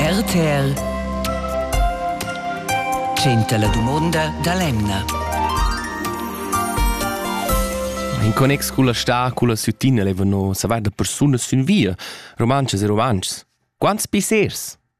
RTL tschenta la dumonda da l'emna. In connex culla sta, culla süttina levano savair da persunas sün via, romanchas e romantschs. Quants pissers?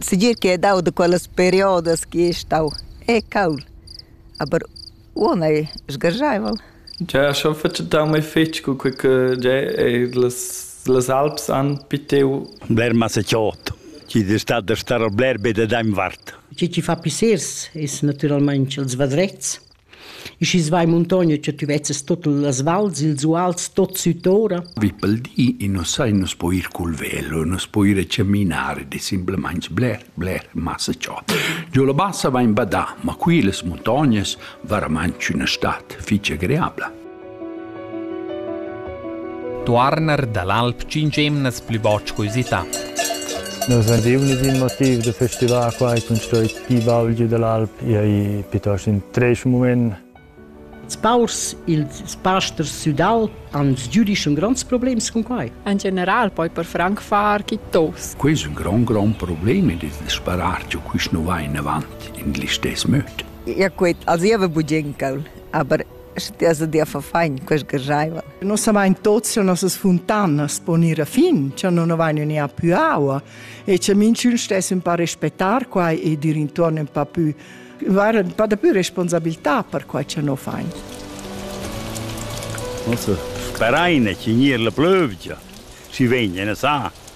Segir ch'ei ei dau da quellas periodas che ei stau e cauld, aber uonn ei sgarscheivel. Gia schon fetg dau mei fetg cu quei che gia ei las las alps han pitiu. Bler masecciot, chi es stat da star bler be da dainvart. Chi chi fa pissers es natüralmaing ils vadrets. E schi's va in muntogna cha tü vezzas tot las vals, ils uals tot süt'ora. Vi pel di e nu sai, nu s'po ir cul velo, nu s'po ir a caminar, ed es simplamaing bler, bler massa ciò. Giò la bassa va in badà, ma qui las muntognas varamaing üna stat fich agreabla. Tuorner dall'alp tschintg emnas plü botsch co usità. Nus vein giu nis in motiv da festivar quai cun stoi ti baulgi dall'alp ei piuttosto in treis mument. Spaurs ils pasters sudal han giudisch un gronds problems con quai. In general poi per franc far chi tos. Quei è un gran gran problem ed il sparar giu quist nu va in avant in glistes möd. Ja quet, also io avevo bugencal, aber Sche ti has dir fafain, quest gergaiva. Nos savain tots che nossas funtanas pon ir a fin, che non avain ni a più aua e che minchün stess un pa respettar quai e dir intorno un pa più var un pa da più responsabilità per quai che no fain. Nus sperain che gnir la plövgia. Si vegna, ne sa.